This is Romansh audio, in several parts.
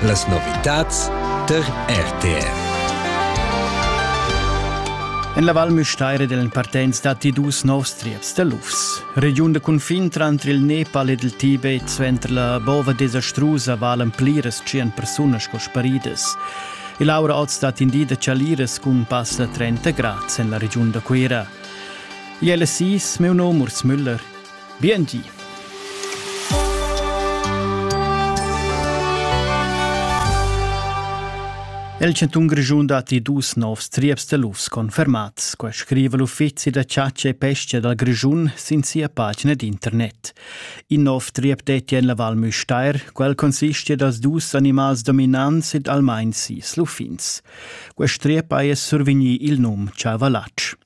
Las novitads tar RTR. En la Val Müstair dellen partenz datti dus novs trieps da lufs. Regiun de cunfin tranter il Nepal ed il Tibet suenter la bova desastrusa valen pliras tschien persunas sco sparidas. Il aura oz stat in di da chaliras cun pass da 30 grads en la regiun da Cuira. Il LSI, meu nom Urs Müller. Bientgi! El chantun Grischun datti dus novs trieps da lufs confermats. Quai scriva l'uffizi da chatscha e pesca dal Grischun sin sia pagina d'internet. In nov triep detti en la Val Müstair. Quel consistia dals dus animals dominants ed almain sis luffins. Quest triep haja survegnì il num Chavalach.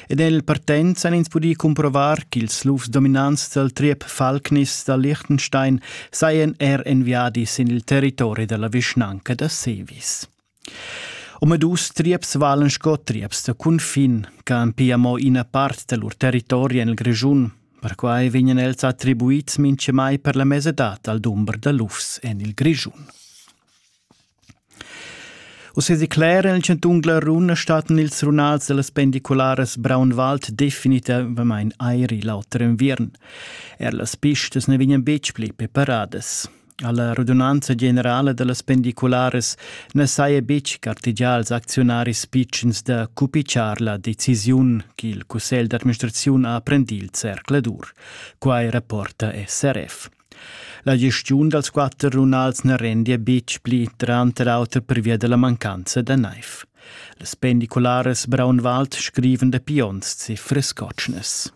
Ed el partenz han ins pudì cumprovar ch'ils lufs dominants dal triep Falknis da Liechtenstein sajan er en viadi sin il territori da la vischnanca da Sevis. Omadus trieps valan sco trieps da cunfin ch'han pia mo ina part da lur territori en il Grischun. Perquai vegnan els attribuids mintgamai per la mesadad al dumber da lufs en il Grischun. Uss declera il chantun Glaruna staten ils runals dellas pendicularas Braunwald definitivamain airi l'auter inviern. Er las pistas ne vegnan betg pli preparadas. Alla radunanza generala dellas pendicularas ne saja betg gartegià als acziunaris pitschens da cupiciar la decisiun che il cussegl d'administraziun ha prendì il zercladur. Quai rapporta SRF. La gestiun dals quatter runals na rendia betg pli tranter auter pervia da la mancanza da naiv. Las pendicularas Braunwald scrivan da pions e frescotschnas.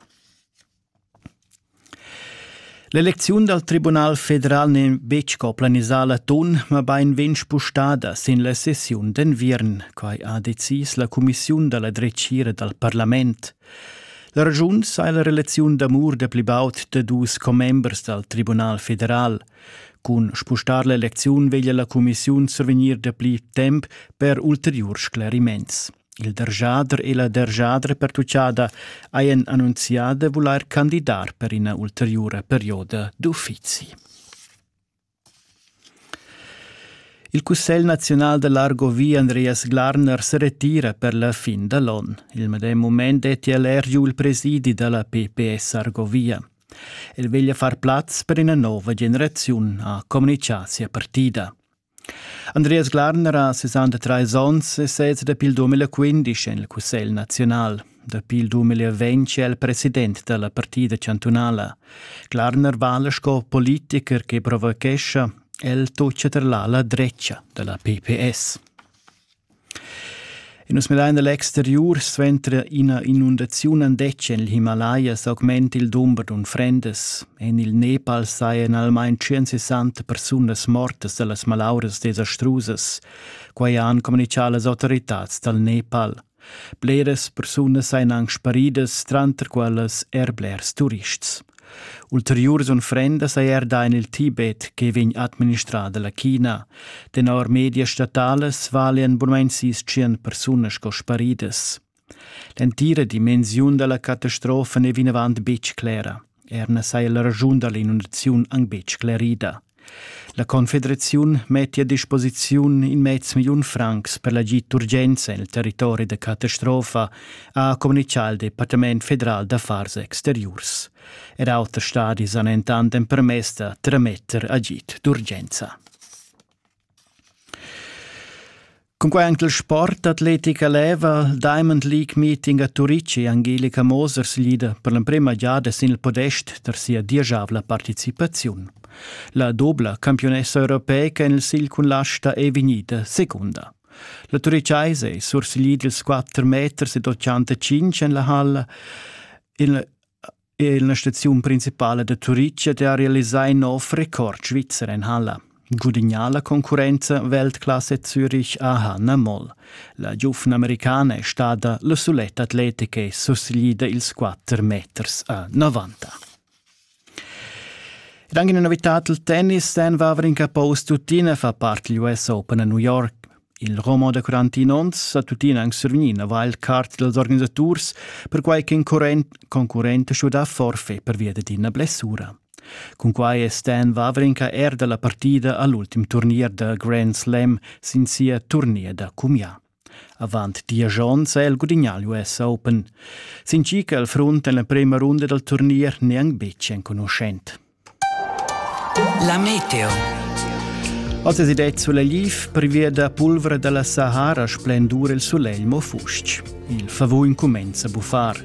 L'elecziun dal Tribunal federal n'è betg co planisà l'atun, ma bain vegn spustada sin la sessiun d'enviern. Quai ha decis la cumissiun da la dretgira dal parlament. La ragiun sai la relaziun d'amur da pli baud da dus commembers dal Tribunal federal. Cun spustar l'elecziun veglia la cumissiun survegnir dapli temp per ulteriurs scleriments. Il dergiader e la dergiadra pertuccada hajan annunzià da vulair candidar per ina ulteriura perioda d'uffizi. Il Cussegl naziunal da l'Argovia Andreas Glarner se retira per la fin da l'on. Il medem mument detti el er giu il presidi da la PPS Argovia. El veglia far plaz per ina nova generaziun, ha comunicà sia partida. Andreas Glarner ha 63 onns e sez dapi il 2015 en il Cussegl naziunal. Dapi il 2020 è el president da la partida chantunala. Klarner vala sco politiker che provochescha el toccia ter la drecha da la PPS. E nus medain dall'exteriur suenter ina inundaziun andetg en il Himalaya s'augment il dumber d'unfrendas. En il Nepal sajan almain 160 persunas mortas da las malauras desastrusas. Quai han communichà las autoritads dal Nepal. Bleras persunas ein aunc sparidas, tranter quellas er blers turists. Ulteriurs unfrendas ei er da en il Tibet che vegn administrada la China. Tenor medias statalas valian bunamein sis tschien persunas sco sparidas. L'entira dimensiun dalla catastrofa n'è vinavant betg clera. Er na saja la raschun da l'inundaziun anc betg sclerida. La Confederaziun metti a disposiziun in mez milliun francs per l'agid d'urgenza en il territori da catastrofa, ha communitgà il Departament federal d'affars exteriurs. Er auters stadis han entant empermess da trametter agid d'urgenza. Cunquai anc il sport atletica leva il Diamond League Meeting a Turici Angelika Moser siglida per l'emprema giada sin il podest tar sia dieschavla participaziun. La dobla campiunessa europeica en il sigl cun l'asta è vegnida secunda. La Turiceise è sursiglida ils 4 meters ed 85 en la halla. Il è la staziun principala da Turitg ed ha realisà in nov record svizzer en halla. Gudignà la concurrenza Weltklasse Zürich-AHA na moll. La giufna americana è stada la suletta atletica e susseglida ils 4 meters a 90. Ed anche una novità del tennis, Dan Vavrin Capo Tutina fa parte degli US Open a New York. Il romo da 41 onns ha tuttina anc survgni ina wildcard dals organisaturs, perquai ch'in current concurrent ha schuidà forfait pervia dad ina blessura. Cunquai è Stan Wawrinka er da la partida a l'ultim turnier da Grand Slam sin sia turnier da cumià. Avant diesch onns è el gudignà l'US Open. Sin chi che al front en la prima runda dal turnier n'è anc betg enconuschent. La meteo. Oz es id sulla gliif privia da pulvra da la Sahara splendur il sulegl mo fusch. Il favun cumenza a buffar.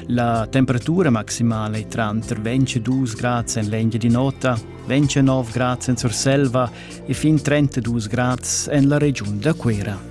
La temperatura maximala è tranter 22 grad en l'engia di nota, 29 grad en Surselva e fin 32 grad en la regiun da Cuera.